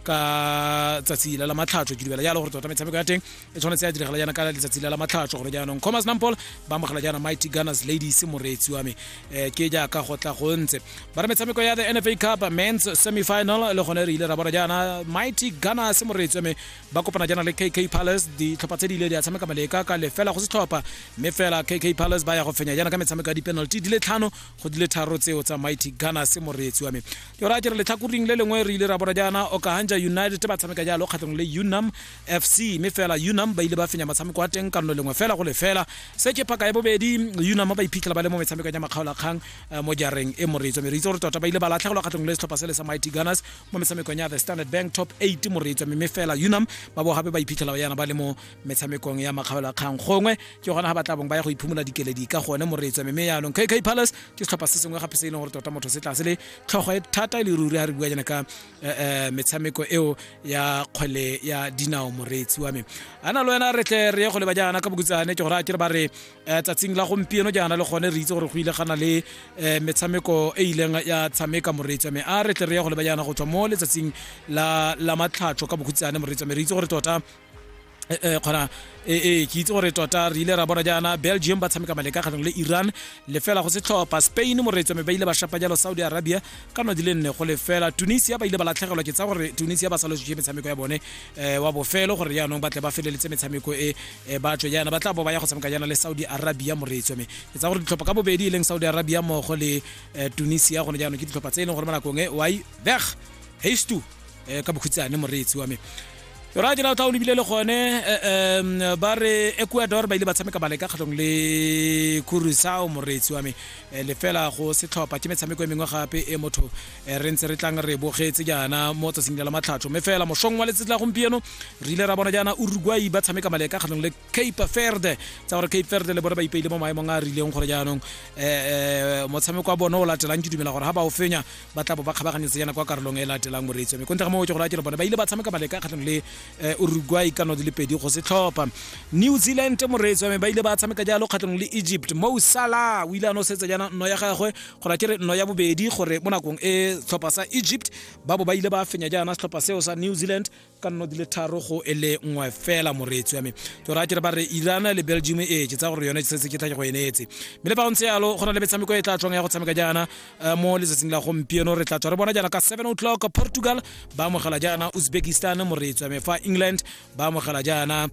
ka tsatsi la la matlhatsho ke dumela jalo gore tota metshameko ya teng e tshwanetse ya diragala jaana ka letsatsi la la matlhatsho gore jaanong commerce nampol ba amogela jaana mighty gunners ladies moreetsi wa me um ke jaaka go tla go ntse ba re metshameko ya the nfa cup mens semifinal le gone re ile ra bona jaana mighty gunners moreetsi wa me ba kopana jaana le kk palace ditlhopha tse di ile di a tshameka maleka ka lefela go setlhopha mme fela kk palace ba ya go fenya jaana ka metshameko ya di-penalty di le tlhano go dile tharo tseo tsa mighty gunners moreetsi wa me yo ra kere letlhakoring le lengwe re ile ra bona jaana okahanja united ba tshameka jalo kgatlhong le unam fc mme fela unam ba ile ba fenya motshameko wa teng kano lengwe fela go le fela se ke phaka ya bobedi unam ba iphitlhela ba le mo metshamekong ya makgaolakgang eh, mo jareng e moreetsi wa me re itse gore tota ba ile ba latlhegelwa kgatlhong le setlhopha se le sa mighty gunners mo metshamekong ya the standard bank top 8 moreetsi wa me mme fela unam ba bo gape ba iphitlhela ba yana ba le mo metshamekong ya makgaolo a kgang gongwe ke gona ga ba tla bong ba ya go iphumola dikeledi ka gone moreetswa mme mme yaanong kk palace ke setlhopha se sengwe gape se e leng gore tota motho se tlase le tlhogo e thata e le ruri ga re bua jana ka eh, eh, metshameko eo ya kgwele ya dinao moreetsi wa me ana le wena re tle re ye go leba jaana ka bokutsane ke gore a kere ba re eh, tsatsing la gompieno jaana le gone re itse gore go ile gana le eh, metshameko e ileng ya tshameka moreetsi wa me a re tle re ye go leba jaana go tswa mo letsatsing la la matlhatso ka bokutsane moreetsi wa me re itse gore tota eh, eh, kgona ee eh, eh, ke itse gore tota re ile ra bona jaana belgium ba tshameka maleka kgatlhang le iran lefela go setlhopha spain moreetso mme ba ile ba shapa jalo saudi arabia ka no di le nne go lefela tunisia ba ile ba latlhegelwa ke tsa gore tunisia ba salositse metshameko ya bone um wa bofelo gore jaanong ba tle ba feleletse metshameko e ba tswe jaana ba tla bo ba ya go tshameka jaana le saudi arabia moreetso mme ke tsa gore ditlhopha ka bobedi e leng saudi arabia mmogo le tunisia gone jaanong ke ditlhopha tse e leng gore mo nakong e wai veg haste eh, ka bokhutsane moreetsi wa me ra ke na tla o lebile le gone um ba re ecuador ba ile ba tshameka bale ka kgatlhong le curusao moreetsi wa me eh, lefela go setlhopha ke metshameko e mengwe gape e motho eh, re ntse re tlang re bogetse jaana mo tsatsing la matlhatsho mme fela mošong wa letsatsi la gompieno re ile ra bona jaana uruguay ba tshameka bale ka kgatlhong le cape verde tsa gore cape verde le bone ba ipeile mo maemong a a rileng gore jaanong um motshameko wa bone o latelang ke dumela gore ga ba o fenya ba tla bo ba kgabaganyetse yana kwa karolong e latelang moreetsi mme kontle ga mootse gore a kere bone ba ile ba tshameka baleka kgatlhang le eh, uruguay ka no di le pedi go se tlhopha new zealand moreetsi mme ba ile ba tshameka jalo kgatlhang le egypt mo sala o ile a no setse jana nno ya gagwe gore a kere nno ya bobedi gore mo nakong e tlhopha sa egypt ba bo ba ile ba fenya jaana setlhopha seo sa new zealand ka nno di le tharo go e le nngwe fela moreetsi wa me ke raya kere ba re irana le belgium e ke tsa gore yone se se ke tla ke go eneetse mme le fa go ntse yalo go na le metshameko e tla tswang ya go tshameka jaana eh, mo letsatsing la gompieno re tla tswa re bona jaana ka 7 o'clock portugal ba amogela jaana uzbekistan moreetsi wa me fa england ba amogela jaana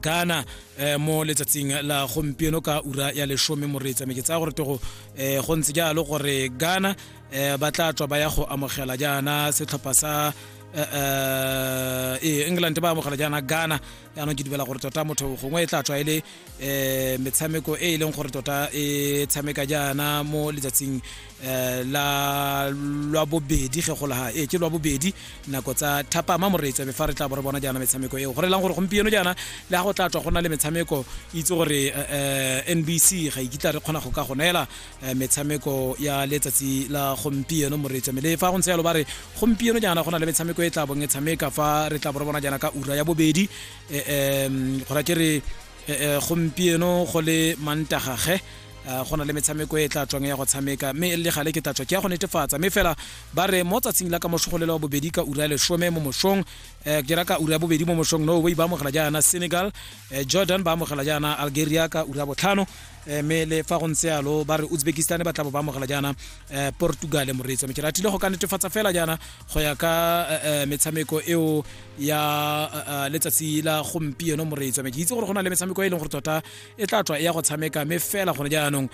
ghana eh, mo letsatsing la gompieno ka ura ya lesome moreetsa me ke tsaya gore tego eh, go ntse jalo gore ghana eh, ba tla tswa ba ya go amogela jaana setlhopha sa Eh, eh, ee england ba amogela jaana ghana yaanong ke dumela gore tota motho gongwe e tla tswa e le um metshameko e e leng gore tota e tshameka jaana mo letsatsing um la lwa bobedi ge go laga ee ke lwa bobedi nako tsa thapama moreetsebe fa re tla bo re bona jaana metshameko eo gore e lang gore gompieno jaana le ga go tla tswa go na le metshameko itse gore um nbc ga ikitla re kgona go ka go neela eh, metshameko ya letsatsi la gompieno moreetso mme le fa go ntse yalo ba re gompieno jaana go na le metshameko e tla bong e tshameka fa re tla bo re bona jaana ka ura ya bobedi um go ra ke re eh, gompieno go le mantagage Eh, go na le metshameko e tla tswang ya go tshameka mme e le gale ke tla tswa ke ya go netefatsa mme fela ba re mo tsatsing la ka moshogolelo wa bobedi ka ura ya lesome mo mosong eh, ke ra ka ura ya bobedi mo mosong norway ba amogela jaana senegal eh, jordan ba amogela jaana algeria ka ura ya botlhano Eh, mme le fa go ntse yalo ba re uzbekistan ba tlabo ba amogela jaana eh, portugal moreetsi wa metsela tlile go ka netefatsa fela jaana go ya ka eh, metshameko eo ya letsatsi la gompieno moreetsi wa me ke itse gore go na le metshameko e leng gore tota e tla tswa e ya go tshameka mme fela gone jaanong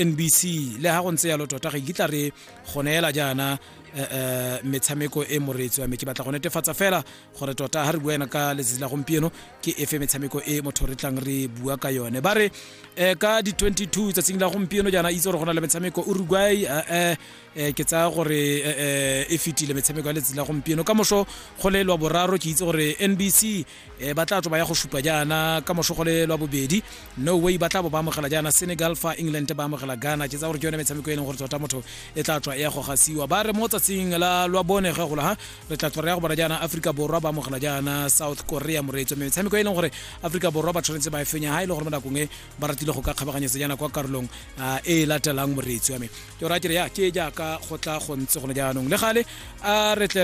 nbc le ga go ntse yalo tota ga ikitla re go neela jaana metshameko e moreetsi wa me ke batla go netefatsa fela gore tota ha re bua ena ka letsatsi la gompieno ke efe metshameko e motho re tlang re bua ka yone ba re um ka di-22 tsatsing la gompieno jaana itse gore go na le metshameko uruguay um ke tsaya gore e fetile metshameko ya letsatsi la gompieno ka moso go le lwa boraro ke itse gore nbc um ba tla tlo ba ya go supa jaana ka moso go le lwa bobedi no way ba tla bo ba amogela jaana senegal fa england ba amogela ghana ke tsaya gore ke yone metshameko e leng gore tota motho e tla tswa e ya go gasiwa ba re mo tsatsing la lwa bone ge gola ha re tla tswa re ya go bona jaana aforika borwa ba amogela jaana south korea moreetso mme metshameko e leng gore aforika borwa ba tshwanetse ba e fenya ga e le gore mo nakong e ba ratile go ka kgabaganyetsa jaana kwa karolong ah, e latelang moreetso ya me ke ora kere ya ke jaaka go tla go ntse gone jaanong le gale a re tle